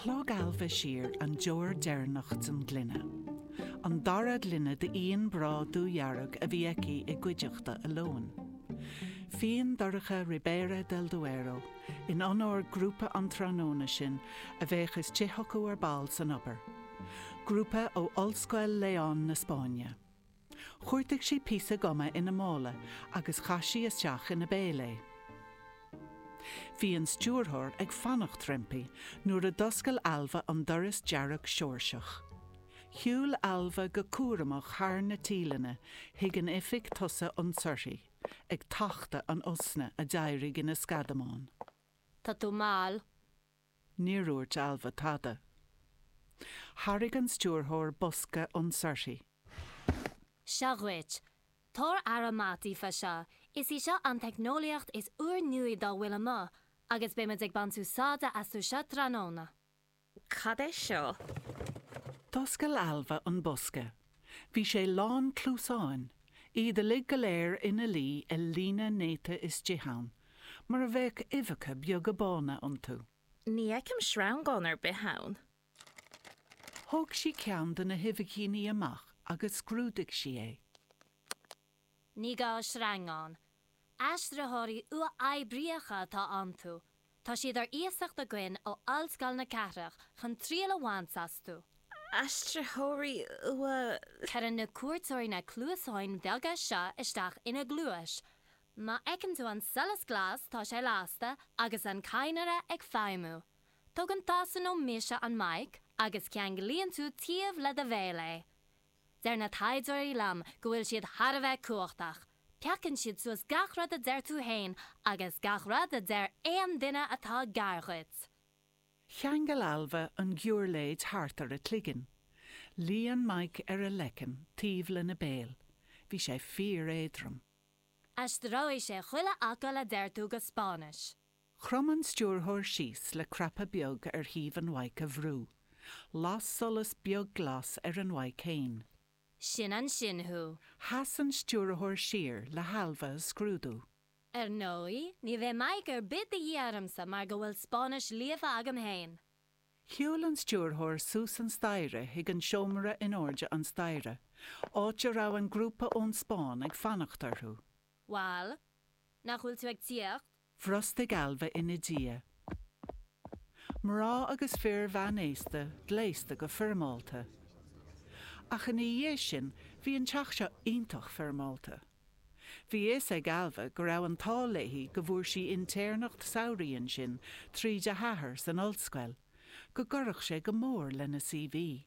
Shlog Ailbhe siar an deoir deireanach den ghloine, an dara gloine d'fhíon breá dúdhearg a bhí aici i gcuideachta a lóin. Fíon dorcha Ribera del Duero, in onóir grúpa an tráthnóna sin a bheadh ag tíocht chucu ar ball san obair, grúpa ó Ollscoil Leon na Spáinne. Chuartaigh sí píosa guma ina mála agus chaith sí isteach ina béal é. Bhí an stiúrthóir ag fanacht roimpi nuair a d'fhoscail Ailbhe an doras dearg Seoirseach. Shiúil Ailbhe go cúramach thar na tíleanna chuig an oifig tosaigh ionsuirthi, ag tachtadh an osna a d'éirigh ina sceadamán. Tá tú mall. Níor dhúirt Ailbhe tada. Thairg an stiúrthóir bosca ionsuirthi. Seo dhuit. Tabhair aire mhaith daofa seo. Is í seo an teicneolaíocht is úrnuaí dá bhfuil amuigh, agus beidh muid ag baint úsáide astu seo tráthnóna. Cad é seo? D'oscail Ailbhe an bosca. Bhí sé lán cluasáin, iad uilig go léir ina luí i líne néata istigh ann mar a bheadh uibheacha beaga bána iontu. Ní fheicim sreangán ar bith ann. Thóg sí ceann de na huibhicíní amach agus scrúdaigh sí é. Ní gá sreangán. Aistritheoirí uathoibríocha atá iontu. Tá siad ar iasacht againn ó Ollscoil na Cathrach chun triail a bhaint astu. Aistritheoirí uath. Cuireann na cuairteoirí na cluasáin bheaga seo isteach ina gcluais. Má fheiceann tú an solas glas, tá sé lasta agus an cadhnra ag feidhmiú. Tógann tusa nó mise an maidhc agus ceanglaíonn tú taobh le do bhéal é. Deir na taighdeoirí liom go bhfuil siad thar a bheith cumhachtach. Piocann siad suas gach rud a deir tú féin agus gach rud a deir aon duine atá gar dhuit. Cheangail Ailbhe an ghiúirléid thart ar a cloigeann. Luigh an maidhc ar a leiceann taobh lena béal. Bhí sé fíor-éadrom. Aistreoidh sé chuile fhocal a deir tú go Spáinnis. Chrom an stiúrthóir síos le cnaipe beag ar thaobh an mhaidhc a bhrú. Las solas beag glas ar an mhaidhc féin. Sin ansin thú! Chas an stiúrthóir siar le hAilbhe a scrúdú. Ar ndóigh, ní bheidh maidhc ar bith de dhíth ormsa mar go bhfuil Spáinnis líofa agam féin. Shiúil an stiúrthóir suas an staighre chuig an seomra in airde an staighre, áit a raibh an grúpa ón Spáinn ag fanacht orthu. Bhal, nach bhfuil tú ag tíocht? Bhrostaigh Ailbhe ina diaidh. Mná agus fir mheánaosta, gléasta go foirmeálta. Ach ina dhiaidh sin, bhí an teach seo iontach foirmeálta. Bhí fhios ag Ailbhe go raibh an t-ádh léi go bhfuair sí intéirneacht samhraidh ansin tríd a hathair san ollscoil, go gcuirfeadh sé go mór lena C.V.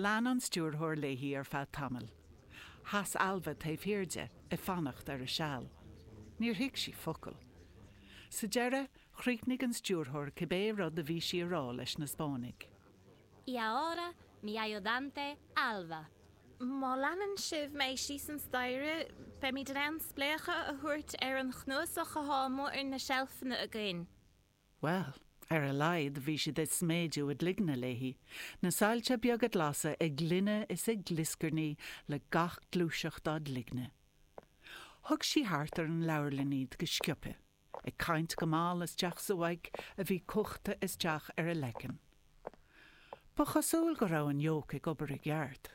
Lean an stiúrthóir léi ar feadh tamaill. Sheas Ailbhe taobh thiar di, ag fanacht ar a seal. Níor thuig sí focal. Sa deireadh, chríochnaigh an stiúrthóir cibé rud a bhí sí a rá leis na Spáinnigh. Y ahora, mi ayudante, Ailbhe. Má leanann sibh mé síos an staighre, beimid in ann spléachadh a thabhairt ar an chnuasach atá ar na seilfeanna againn. Bhuel, ar a laghad bhí siad ag sméideadh a gcloigne léi, na soilse beaga glasa ag glinneadh is ag glioscarnaí le gach gluaiseacht dá gcloigne. Thug sí thart ar an leabharlann iad go sciobtha, ag caint go mall isteach sa mhaidhc a bhí cuachta isteach ar a leiceann. Ba chosúil go raibh an mic ag obair i gceart.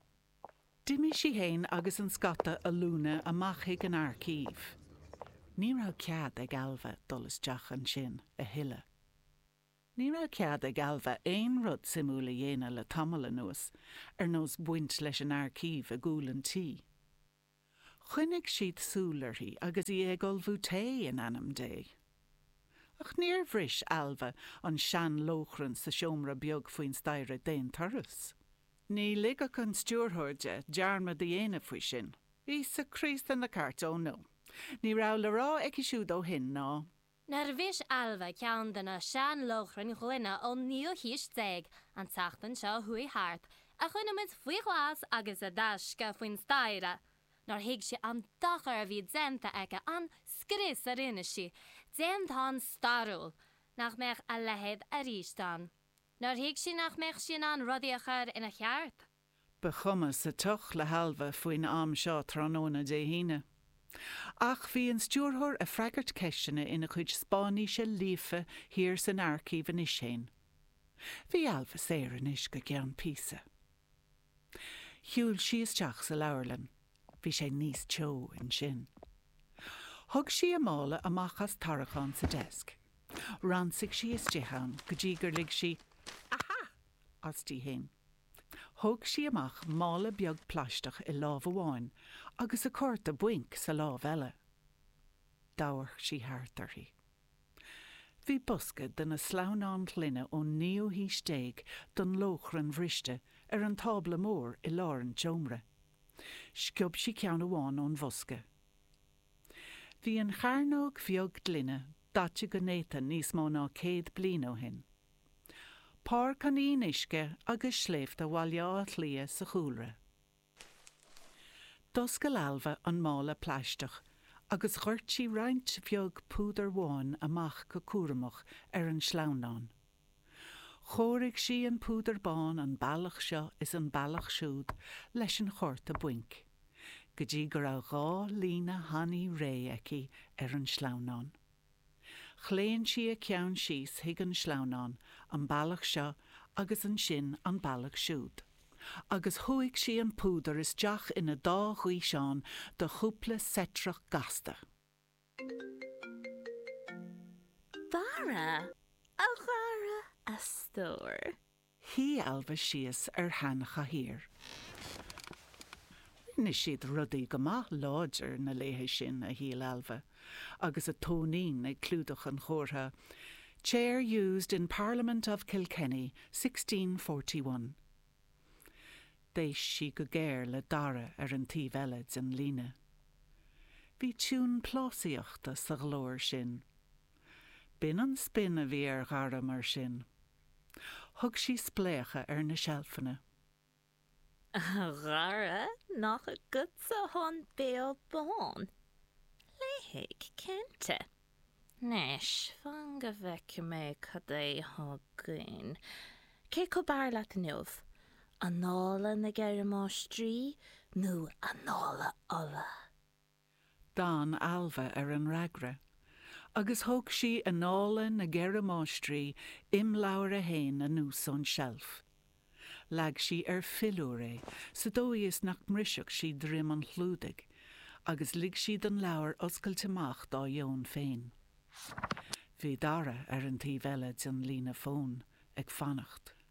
D'imigh sí fhéin agus an scata ollúna amach chuig an aircív. Ní raibh cead ag Ailbhe dul isteach ansin a thuilleadh. Ní raibh cead ag Ailbhe aon rud suimiúil a dhéanamh le tamall anuas, ar nós baint leis an aircív i gcúl an tí. Choinnigh siad súil uirthi agus í ag ullmhú tae in ainm Dé. Ach níor bhris Ailbhe an sean-lóchrann sa seomra beag faoin staighre d'aon turas. Ní ligfeadh an stiúrthóir di dearmad a dhéanamh faoi sin. Íosa Críost na gceart, oh no. Ní raibh le rá aici siúd ó shin ná. Nár bhris Ailbhe ceann de na sean-lóchrainn ghloine ón naoú haois déag, an tseachtain seo a chuaigh thart, a choinnigh muid faoi ghlas agus i dtaisce faoin staighre? Nár thuig sí an dochar a bhí déanta aici, an scrios a rinne sí, déantán stairiúil? Nach mbeadh a leithéid arís ann? Nár thuig sí nach mbeadh sí in ann rudaí a chur ina cheart? Ba chuma sa tsioc le hAilbhe faoin am seo tráthnóna Dé hAoine. Ach bhí an stiúrthóir ag freagairt ceisteanna ina cuid Spáinnise líofa thiar san aircív anois féin. Bhí Ailbhe saor anois go ceann píosa. Shiúil sí isteach sa leabharlann. Bhí sé níos teo ansin. Thug sí a mála amach as tarraiceán sa deasc. Ransaigh sí istigh ann go dtí gur lig sí A ha! aisti féin. Thóg sí amach mála beag plaisteach i lámh amháin agus a cárta bainc sa lámh eile. D'amharc sí thart uirthi. Bhí bosca de na sleamhnáin ghloine ón naoú haois déag don lóchrann bhriste ar an tábla mór i lár an tseomra. Sciob sí ceann amháin ón bhosca. Bhí an chearnóg bheag ghloine daite go néata níos mó ná céad bliain ó shin. Páirc an Fhionnuisce agus sléibhte Bhaile Átha Cliath sa chúlra. D'oscail Ailbhe an mála plaisteach agus dhoirt sí roinnt bheag púdar bháin amach go cúramach ar an sleamhnán. Chóirigh sí an púdar bán an bealach seo is an bealach siúd leis an chárta bainc, go dtí go raibh dhá líne thanaí réidh aici ar an sleamhnán. Chlaon sí a ceann síos chuig an sleamhnán, an bealach seo agus ansin an bealach siúd, agus shúigh sí an púdar isteach ina dá ghaosán de chúpla seitreach gasta. Dara, a Dhara, a stór. Shuigh Ailbhe síos ar sheanchathaoir. Rinne siad rudaí go maith láidir na laethe sin, a shíl Ailbhe, agus a tóinín ag clúdach an chomhartha Chair used in Parliament of Kilkenny 1641. D'éist sí go géar le Dara ar an taobh eile den líne. Bhí tiúin plásaíochta sa ghlór sin. B'in an spin a bhí ar Dhara mar sin. Thug sí spléachadh ar na seilfeanna. 'A Dhara, nach agatsa atá an béal bán? 'Léifidh, cinnte. Anois, fan go bhfeicfidh mé cad é atá againn. Cé acu b'fhearr leat inniu, Annála na gCeithre Máistrí nó Annála Uladh? D'fhan Ailbhe ar an fhreagra, agus thóg sí Annála na gCeithre Máistrí, Imleabhar 1, anuas ón tseilf. Leag sí ar philiúr é sa dóigh is nach mbrisfeadh sí droim an chlúdaigh, agus lig sí don leabhar oscailt amach dá dheoin féin. Bhí Dara ar an taobh eile den líne fóin, ag fanacht.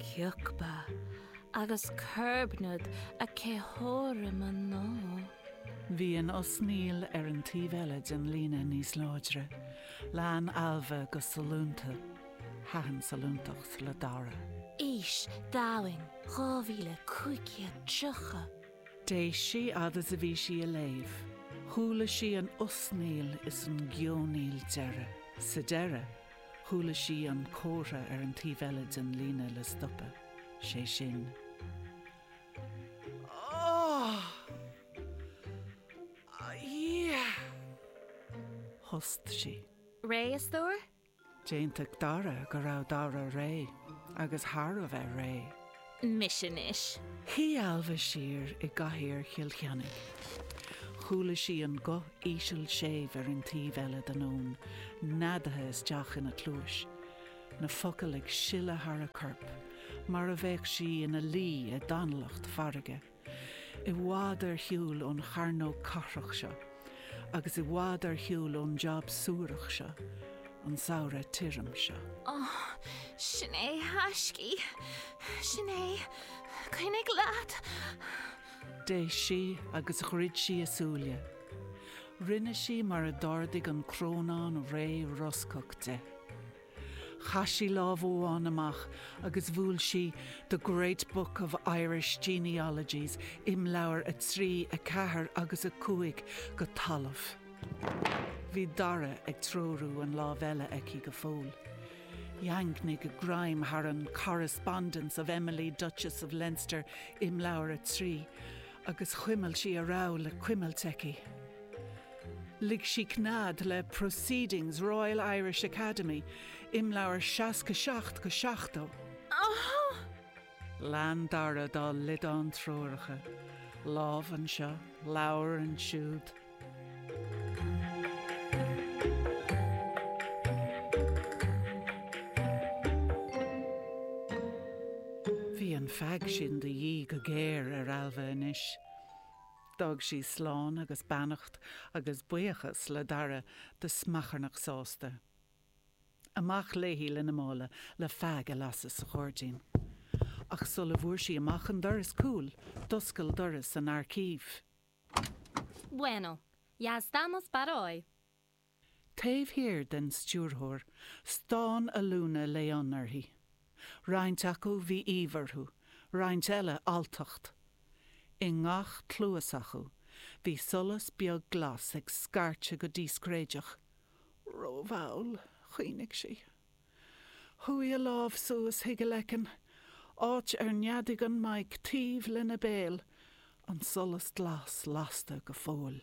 Ciocba agus Cerbnad a cetheora mná. Bhí an osnaíl ar an taobh eile den líne níos láidre, lean Ailbhe go sollúnta, thaitin sollúntacht le Dara. Aois, Domhain, 2530. D'éist sí fad is a bhí sí ag léamh, chuala sí an osnaíl is an geonaíl deireadh. Sa deireadh, Chuala sí an comhartha ar an taobh eile den líne le stopadh, sé sin, Áááá! A Dhia! Thost sí. Réidh, a stór? D'aontaigh Dara go raibh Dara réidh, agus thar a bheith réidh. mise anois. Shuigh Ailbhe siar i gcathaoir Chill Cheannaigh. Chuala sí an guth íseal séimh ar an taobh eile den fhón, neadaithe isteach ina cluais. Na focail ag sileadh thar a corp, mar a bheadh sí ina luí i dtanalacht farraige. I bhfad ar shiúl ón chearnóg cathrach seo, agus i bhfad ar shiúl ón jab suarach seo, an samhradh tirim seo. Ó, sin é, a thaiscidh. Sin é. Coinnigh leat. D'éist sí agus dhruid sí a súile. Rinne sí mar a d'ordaigh an crónán réidh roscach di. Chaith sí lámh amháin amach agus bhuail sí The Great Book of Irish Genealogies, imleabhair 3, 4 agus 5, go talamh. Bhí Dara ag treorú na láimhe eile aici go fóill. Dhaingnigh a greim thar an Correspondence of Emily, Duchess of Leinster, imleabhar 3, agus chuimil sí a raibh le cuimilt aici. Lig sí cnead le Proceedings Royal Irish Academy, imleabhair 67-70. Lean Dara dá liodán treoracha, lámh anseo, leabhar ansiúd. Bhí an feaig sin de dhíth go géar ar Ailbhe anois. D'fhág sí slán agus beannacht agus buíochas le Dara de smeacharnach sásta. Amach léi lena mála le feaig a lasadh sa ghairdín. Ach sula bhfuair sí amach an doras cúil, d'oscail doras an aircív. Bueno. Ya estamos para hoy. Taobh thiar den stiúrthóir, stán ollúna León uirthi. Roinnt acu bhí aoibh orthu, roinnt eile alltacht. I ngach cluas acu bhí solas beag glas ag scairteadh go díscréideach. Rómhall, chuimhnigh sí. Chuaigh a lámh suas chuig a leiceann, áit ar neadaigh an mike taobh lena béal, an solas glas lasta go fóill.